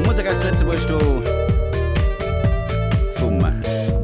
Musek aus Lëtzebuerg do vum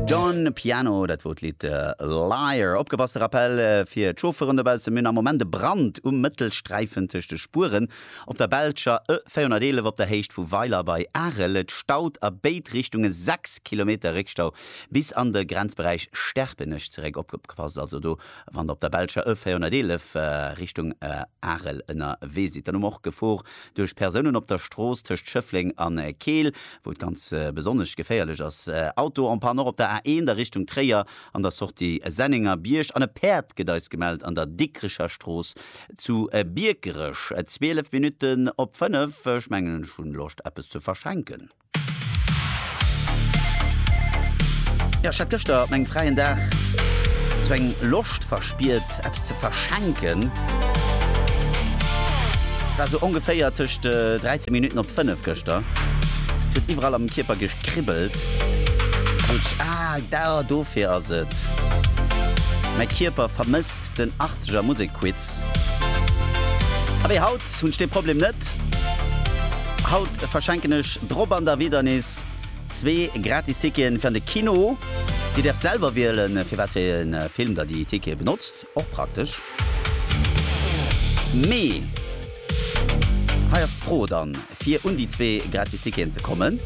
Don Piano, dat wor d'Lidd äh, Liar. Opgepasst, de Rappel äh, fir d'Chauffeuren dobaussen, mir hunn am Moment e Brand um Mëttelsträifen tëscht de Spueren op der belscher E 411 op der Héicht vu Weiler bei Arel. Et staut a béid Richtunge 6 Kilometer, Réckstau bis an de Grenzberäich Sterpenech zeréck. Opgepasst also do. Wann der op der belscher E 411 Richtung Arel ënnerwee sidd, dann hu mer och Gefor duerch Persounen op der Strooss tëscht Schëffleng an Keel, wou et ganz besonnesch geféierlech ass. Auto en panne och op der A1 a Richtung Tréier an der Sortie Sennenger Bierg an e Päerd gëtt eis gemellt an der Dikricher Strooss zu Biekerech. 12 Minutten op 5, ech mengen ech hunn Loscht eppes ze verschenken. Jo, ech hat gëschter op mengem fräien Dag sou eng Loscht verspiert, eppes ze verschenken. Et war sou ongeféier tëscht 13 Minutten op 5 gëschter. Et huet iwwerall am Kierper gekribbelt. An ech, ah, da, dofir ass et. Mäi Kierper vermësst den Achtzeger Musekquiz. Abee haut hunn ech dee Problem net. Haut verschenken ech drop an der Wiedernis zwee gratis Ticketen fir an de Kino. Dir däerft selwer wielen, fir wat fir ee Film der déi Tickete benotzt, och praktesch. Mee hei ass d'Fro dann, fir un déi zwee gratis Ticketen ze kommen.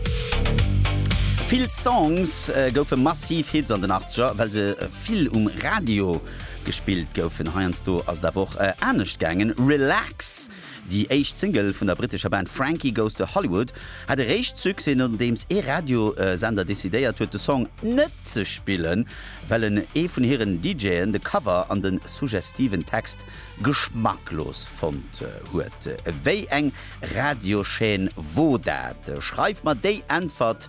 Vill Songs goufe massiv Hits an den Achtzeger, well se vill um Radio Gespillt goufen heiansdo ass et awer och anescht gaangen, Relax, déi éischt Single vun der brittescher Band Frankie Goes to Hollywood, hat eréischt Succès nodeems ee Radiosender decidéiert huet de Song net ze spillen, well en ee vun hiren DJen de Cover an de suggestiven Text geschmacklos fonnt huet. Wéi eng Radiochaîne wor dat? Schreift mer déi Äntwert